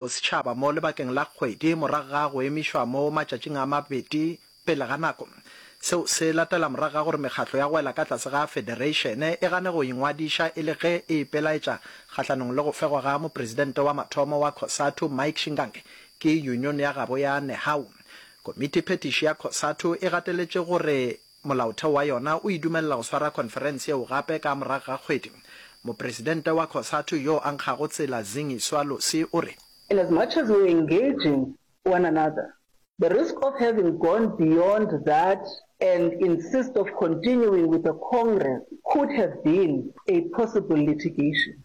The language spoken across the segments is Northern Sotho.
Bosetšhaba mo lebakeng la kgwedi morago ga go emišwa mo matšatšing a mabedi pele ga nako. Seo se latela morago ga gore mekgatlo ya go wela ka tlase ga federeišene e gane go ingwadiša e le ge e ipelaetša kgahlanong le go fegwa ga mopresidente wa mathomo wa Cosatu, Mike Shingange, ke yunione ya gabo ya Nehawu. Komiti phetiši ya Cosatu e gateletše gore. Molaotheo wa yona o e dumelela go swara khonferense yeo gape ka morago ga kgwedi. Mopresidente wa Cosatu yo a nkgago tsela Zingiswa Losi o re. In as much as we're engaging one another, the risk of having gone beyond that and insist of continuing with the Congress could have been a possible litigation.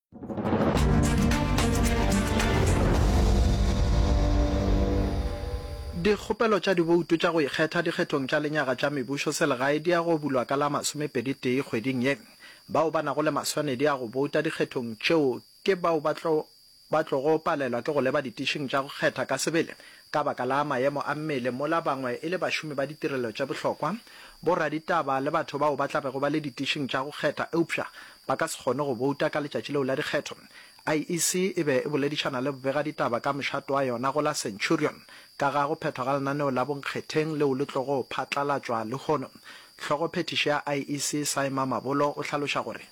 Dikgopelo tša diboutu tša go ikgetha dikgethong tša lenyaga tša mebušo selegae di ya go bulwa ka la masomepedi-tee kgweding ye. Bao ba nago le maswanedi a go bouta dikgethong tšeo ke bao ba tlo ba tlogo palelwa ke go leba ditišing tša go kgetha ka sebele Ka baka la maemo a mmele mola bangwe e le bašomi ba ditirelo tše bohlokwa, boraditaba le batho bao ba tla bego ba le ditišing tša go kgetha eupša ba ka se kgone go bouta ka letšatši leo la dikgetho, IEC e be e boledišana le bobegaditaba ka mošate wa yona go la Centurion ka ga go phethwa ga lenaneo la bonkgetheng leo le tlogo phatlalatšwa lehono. Hlogophethiši ya IEC Saima Mabolo o hlaloša gore.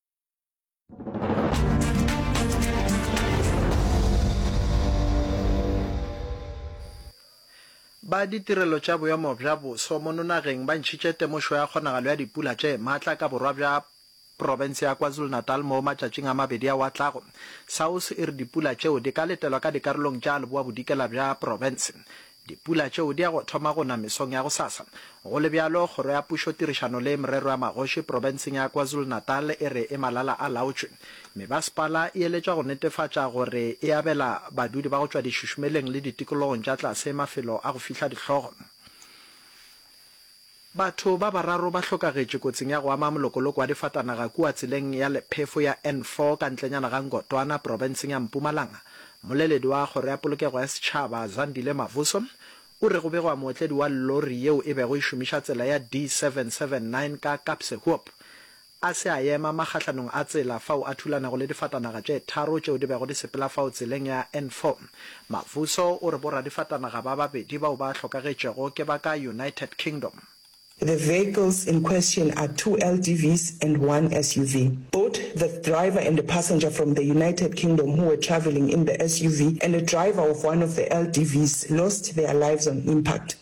ba ditirelo tša boemo bja boso mo nonageng ba ntšhitše temošo ya kgonagalo ya dipula tše maatla ka borwa bja profense ya kwazulu-natal mo matšatšing a mabedi ao a tlago saus e re dipula tšeo di ka letelwa ka dikarolong tša leboa-bodikela bja profense Dipula tšeo di ya go thoma go na mesong ya gosasa. Go le bjalo, Kgoro ya Pušo tirišano le Merero ya Magoši profenseng ya KwaZulu-Natal e re e malala a laotšwe. Mebasepala e eletšwa go netefatša gore e abela badudi ba go tšwa dišušumeleng le ditikologong tša tlase mafelo a go fihla dihlogo. Batho ba bararo ba hlokagetše kotsing ya go ama molokoloko wa difatanaga kua tseleng ya lephefo ya N4 ka ntlenyana ga Ngotwana, profenseng ya Mpumalanga. Mmoleledi wa Kgoro ya Polokego ya Setšhaba, Zandile Mavuso, o re go begwa mootledi wa lori yeo e bego e šomiša tsela ya D779 ka Kaapse Hoop A se a ema makgahlanong a tsela fao a thulanago le difatanaga tše tharo tšeo di bego di sepela fao tseleng ya N4. Mavuso o re boradifatanaga ba babedi bao ba hlokagetšego ke ba ka United Kingdom. The vehicles in question are two LDVs and one SUV. Both the driver and a passenger from the United Kingdom who were travelling in the SUV and a driver of one of the LDVs lost their lives on impact.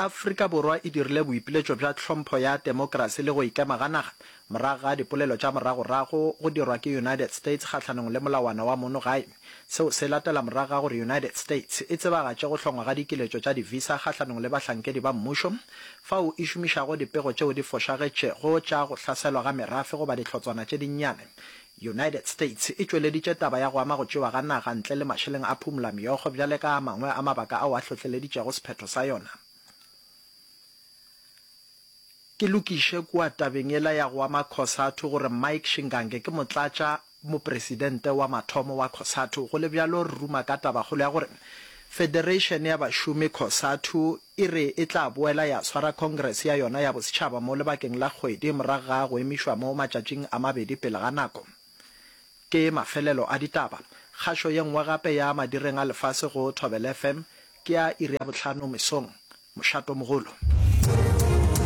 Afrika Borwa e dirile boipiletšo bja tlhompho ya temokrasi le go ikema ga naga morago ga dipolelo tša moragorago go dirwa ke United States kgahlanong le molawana wa mono gae. Seo se latela morago ga gore United States e tsebagatše go hlongwa ga dikiletšo tša di-visa kgahlanong le bahlankedi ba mmušo fao e šomišago dipego tšeo di fošagetšego tša go hlaselwa ga merafe goba dihlotswana tše dinnyane United States e tšweleditše taba ya go ama go tšewa ga naga ntle le mašeleng a phumolameokgo bjale ka a mangwe a mabaka ao a hlohleleditšego sephetho sa yona. Ke lokiše kua tabeng yela ya go ama Cosatu gore Mike Shingange ke motlatša mopresidente wa mathomo wa Cosatu. Go le bjalo, re ruma ka tabakgolo ya gore Federation ya Bašomi, Cosatu, e re e tla boela ya swara Congress ya yona ya Bosetšhaba mo lebakeng la kgwedi morago ga go emišwa mo matšatšing a mabedi pele ga nako. Ke mafelelo a ditaba. Kgašo ye nngwe gape ya Madireng a Lefase go Thobela FM ke ya iri ya bohlano mesong. Mošato mogolo.